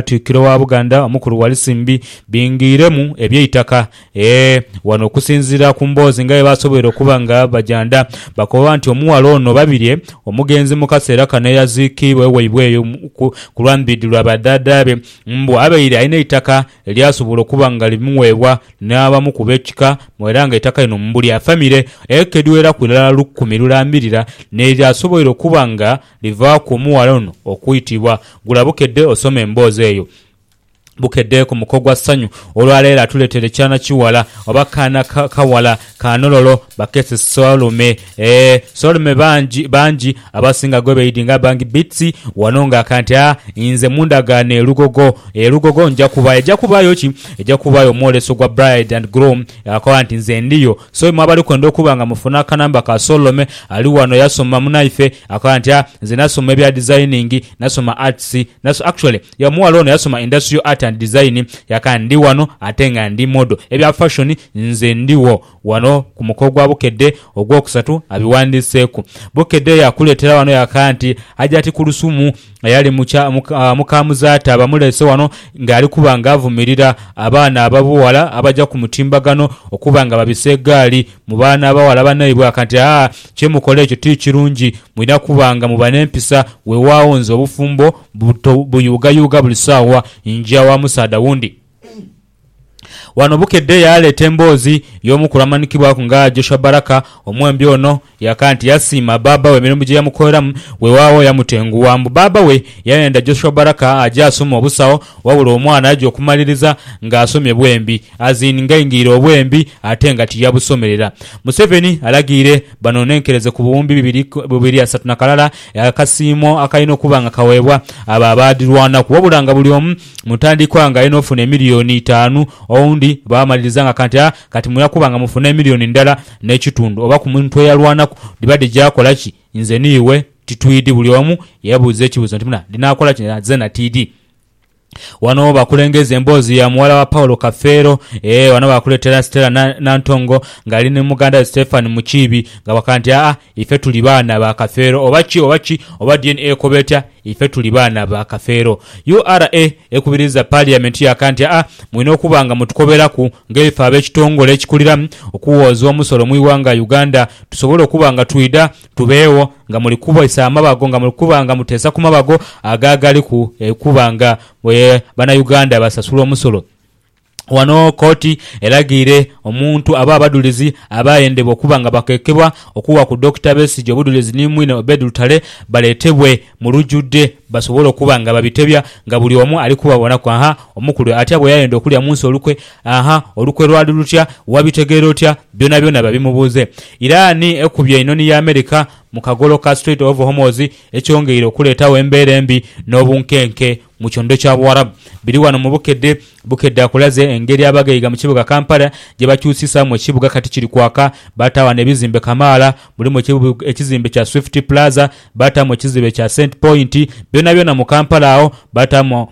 Katikkiro wa Buganda omukulu Walusimbi bingiiremu eby'eitaka. Eeh! Wano okusinziira ku mboozi nga bwebasoboire okuba nga bajanda, bakoba nti omughala ono Babirye omugenzi mu kaseera kano eyaziikiibwa waibwe eyo ku lwa Mbiidhi lwa badhaadhaabe mbu abaire alina eitaka elyasobola okuba nga limuweebwa n'abamu ku b'ekika era nga eitaka lino mbu lya famire eka edhiweraku irala lukumi lulambirira n'eryasoboire okuba nga Bivaaku omughala ono okwitibwa. Gula bukedde osome emboozi eyo. Bukedde ku muko gwa ssanyu olwaleero atuleetere kyana kiwala oba kaana kawala ka Nololo bakeese Solume. Eeh Solume bangi bangi abasinga gwebeidinga bangi beats wano nga kanti a inze mundagaano e Lugogo. E Lugogo nja kubaayo. Eja kubaayo ki? Eja kubaayo omwoleso gwa bride and groom akoba nti nze ndiyo. So imwe abali kwenda okuba nga mufuna akanamba ka Solome, ali wano eyasoma munaife, akoba nti, Ah, nze nasoma ebya designing, nasoma arts, naso-. Actually, ye omughala ono yasoma Industrial Art and Design, yaka, Ndi wano ate nga ndi model. Ebya fashion, nze ndigho wano ku muko gwa Bukedde ogwokusatu abiwandiiseeku. Bukedde yakuleetera wano yaka nti, Hajati Kulusumu, eyali mukya, muka Muzaata bamuleese wano nga ali kuba nga avumirira abaana ababughala abaja ku mutimbagano okuba nga babisa egaali mu baana abaghala banaibwe akanti aa kye mukola ekyo ti kirungi mulina kuba nga muba n'empisa wewaagho nze obufumbo buyuugayuuga buli saawa nja wa musaadha wundi Wano Bukedde yaaleeta emboozi y'omukulu amanhikibwaku nga Joshua Baraka. Omwembi ono yaka nti yasiima bbaabba we emirimu gye yamukoleramu, weewaawo yamutengugha. Mbu bbaabba we yayenda Joshua Baraka aje asome obusawo wabula omwana yaja okumaliriza ng'asomye bwembi as in ng'aingirire obwembi ate nga tiyabusomerera. Museveni alagiire banonenkereze ku buwumbi bibiri bubiri asatu na kalala akasiimo akalina okuba nga kaweebwa abo abaadhirwanaku wabula nga buli omu mu ntandikwa nga alina ofuna emiliyoni itaanu, owundi baamaliriza nga kanti a kati mwira kuba nga mufuna emiliyoni ndala n'ekitundu oba ku muntu eyalwanaku dhiba dhija akola ki? Nze ni iwe titwidhi buli omu yeebuuza ekibuuzo nti muna dhinaakola ki na zeena tiidhi. Wano bakulengeza emboozi ya muwala wa Paul Kafeero ee wano baakuleetera Stella Nantongo ng'ali ni muganda we Stephanie Mukiibi nga bakaga nti aa Ife tuli baana ba Kafeero oba ki oba ki oba DNA ekoba etya, ife tuli baana ba Kafeero. URA ekubiriza Parliament yaka nti aa mwine okuba nga mutukoberaku ng'eife ab'ekitongole ekikulira okuwooza omusolo mu ighanga Uganda tusobole okuba nga twidha tubeegho nga muli kubisa amabago nga muli kuba nga muteesa ku mabago ago agaliku okuba nga banauganda basasula omusolo. Ghano kooti eraghiire omuntu aba abadhulizi abaayendebwa okuba nga bakekebwa okuwa ku Dokita Besigye obudhulizi ni mwine Obed Lutale baleetebwe mu lujudhe basobole okuba nga babitebya nga buli omu ali kubabonaku aha omukulu atya bwe yayenda okulya mu nsi olukwe aha olukwe lwali lutya wabitegeera otya byonabyona babimubuuze Iran ekubye einhonhi ya America mu kagolo ka Strait of Hormoz ekyongeire okuleetagho embeera embi n'obunkenke mu kyondo kya Buwarabu biri wano mu bukedde. Bukedde akulaze engeri abaghaiga mu kibuga Kampala gye bakyusisaamu ekibuga kati kiri kwaka. Bata wano ebizimbe kamaala, mulimu ekizimbe kya Swift Plaza, bataamu ekizibe kya Cent Point, byonabyona mu Kampala agho. Bataamu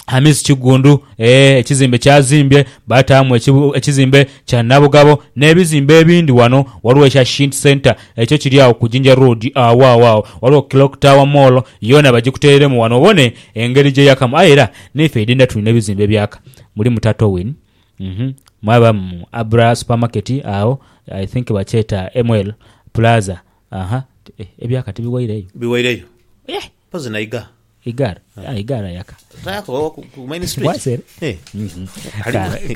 Hamis Kiggundu, eeh, ekizimbe ky'azimbye, bataamu ekizimbe kya Nabugabo n'ebizimbe ebindi. Wano waliwo ekya Shint Centre. Ekyo kiri agho ku Jinja Road agho agho agho ghaligho Clock Tower Mall yoona bagikuteeremu wano obone engeri gye yakamu aye era neife idinda tulina ebizimbe ebyaka mulimu Tatowin uhmm mwabamu Abra Supermarket agho I think bakyeta ML Plaza ahaa ebyaka tibiwaireyo. Biwaireyo. Mpozi na iga. Igar ah igar ayaka. Tayaka oba ku main street. Bwasere. Eh.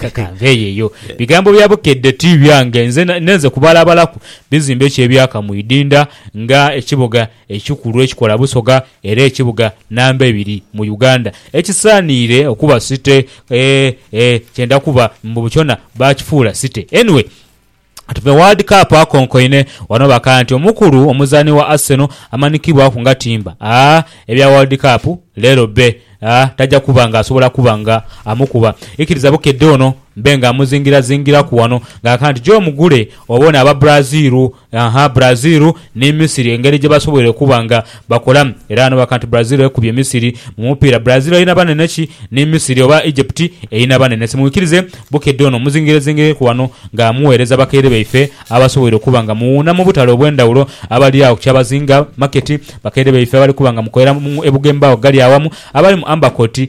Ka, kanveeyo eyo. Bigambo bya Bukedde ti byange. Nze nenze kubalabalaku bizimbe ki ebyaka mu idinda nga ekibuga ekikulu ekikola Busoga era ekibuga namba ebiri mu Uganda ekisaaniire okuba City. Eh, eh, kyenda kuba mbu kyona baakifuula City. Anyway. Tuve World Cup akonkoine wano bakaaya nti omukulu omuzaani wa Arsenal amanikibwaku nga timba aa ebya World Cup leero bbe aa taja kuba nga asobola kuba nga amukuba ikiriza bukedde ono mbe nga amuzingirazingiraku wano nga akaaya nti gyo mugule obone aba Brazil aa Brazil ni Misiri engeri gye basoboire okuba nga Bakola era n'obaka nti Brazil ekubye Misiri mu mupiira. Brazil erina banene ki ni Misiri oba Egypt erina banene? Simwikirize bukedde ono muzingirezingireku wano nga muweereza bakaire baife abasoboire okuba nga muwuuna mu butale obw'endhawulo abali agho ku Kyabazinga Market, bakaire baife abali kuba nga mukolera e Bugembe agho gali awamu, abali mu Amber Court,